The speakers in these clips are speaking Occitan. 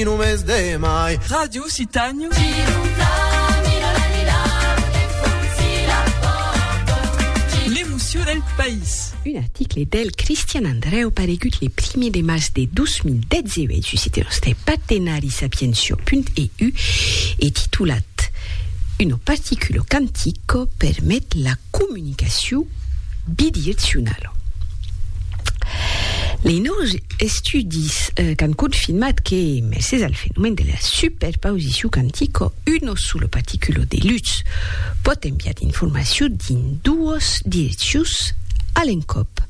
in un mes de mai. Ràdio Occitània. L'emocion del país. Un article del Cristian Andrèu paregut le primièr de març de 2018 sus site nòste patenarisapiensio.eu e titulat Uno particulo cantico permet la comunicacion bidieccional. Lei nòus estudis qu'an confirmat que, mercés al fenomèn de la superpausicion quantica, uno solo particulo de lutz pòt enviar d'informacion dins doas direccions a l'encòp.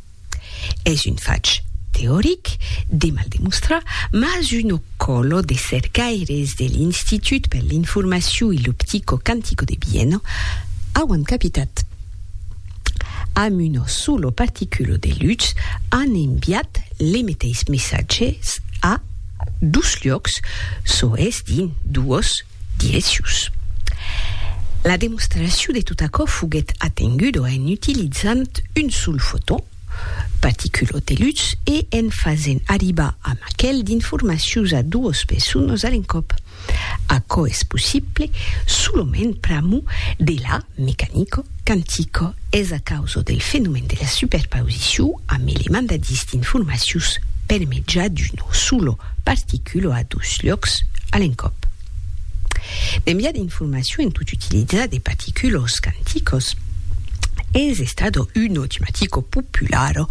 Es un fach teoric, de mal demostrar, mas uno còlo de cercaires de l'Institut per l'informacion e l'optico quantico de Viena auan capitat. amb una sola particula de lutz an enviat les meteis messatges a dos luòcs, çò es dins doas direccions. La demostracion de tot aquò foguèt atenguda en utilizant un sol foton, particula de lutz, e en fasent arribar amb aquel d'informacions a doas personas a l'encòp. Aquò es possible solament pr'amor de la mecanico quantico, es a causa del fenomèn de la superpausicion amb element de distint formacius per mejà d'una sola particula a dos luòcs a l'encòp. L'enviar d'informacion en tot utilizar de particulos quanticos es estada una tematica populara,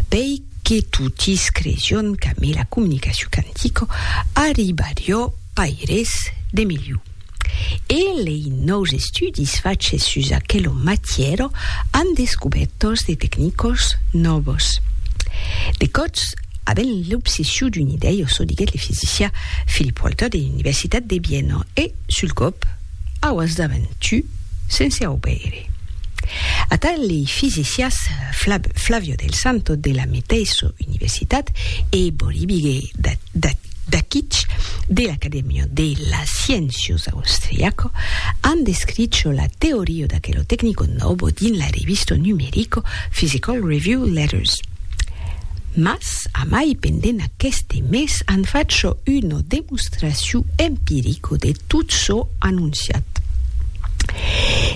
pei Que totis cresion qu'amé la comunicacion quantico arribarió paires de melhor. E lei nòus estudis faches sus aquelo matièro an descubèrtos de tecnicos nòvos. De còts, avent l'obsession d'una idèia, çò diguèt le fisicià Philip Walter de l'Universitat de Viena e, sul còp, Auas davent tu, sense aubeire. Atà lei fisicias Flavio del Santo de la meteissa universitat e Boribige Dakic de l'Academia de las Sciéncias austriaca an descricho la teoria d'aquelo tecnico nobo dins la revista numerica Physical Review Letters. Mas amai pendent aqueste mes an facho una demonstracion empirico de tot çò anonciat.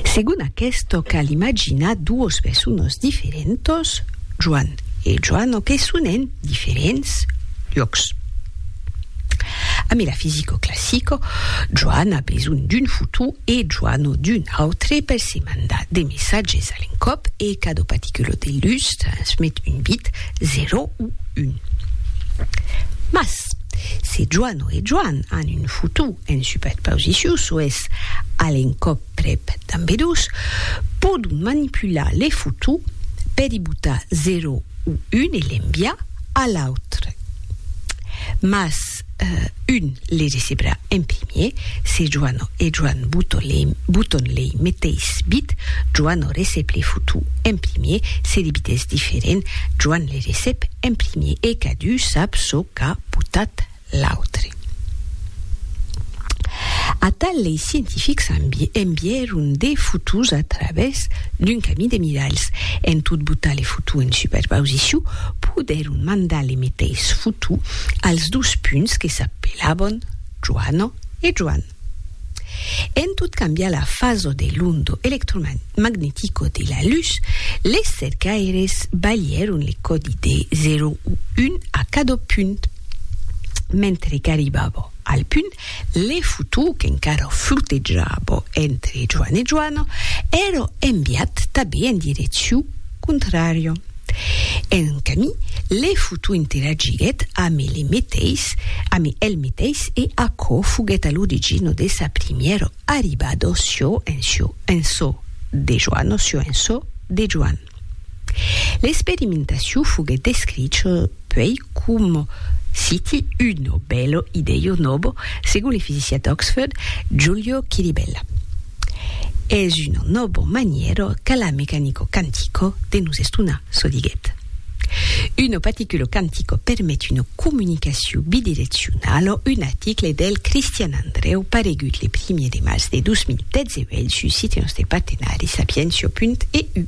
Segon aquesto cal imaginar duos personos diferentos, Joan e Joano que sonen diferents lhòcs. A metafisico classico, Joan a besonh d'un futur e Joan o d'un autre per se mandar de messatges a l'encòp e cada particulo de lutz transmet un bit, 0 o 1. Mas, se Joan o e Joan an un futur en superpausiciu, çò es, a l'encòp, Prèp d'ambedós pòdon manipular les fotós per i botar 0 o 1 e l'enviar a l'autre. Mas un les recebrà en primièr, se Joana e Joan boton lei meteis bit, Joana recep les fotós en primièr, se li bit es diferent, Joan les recep en primièr e cadun sap çò qu'a botat. L'autre. Atal lei scientifics envièron de fotos a travèrs d'un camí de miralhs. En tot botar le foto en superpausiciu, podèron mandar le meteis foto als dos punts que s'apelavan Joana e Joan. En tot cambiar la faso de l'ondo electromagnetico de la lutz, les cercaires balhèron le còdi de 0 o 1 a cada punt. Mentre qu'arribava al punt, le fotó qu'encara flotejava entre Joan e Joana èra enviat tanben en direccion contrària. En un camí, le futu interagiguèt amb ele meteis, amb el meteis e aquò foguèt a l'origino de sa primièro arribado sio en sio en so de Joan o sio en so de Joan. L'experimentaciu foguèt descricho Puèi, coma siti uno bèlo idèio nobo, segon le fisiciat d'Oxford, Giulio Chiribella, es uno nobo manièro qu'a la mecanico quantico de nos estonar, çò diguèt. Uno paticulo quantico permet una comunicacion bidireccionala, un article del Cristian Andrèu paregut le primièr de març de 2018 sus Site Nòste Partenari Sapientiò.eu.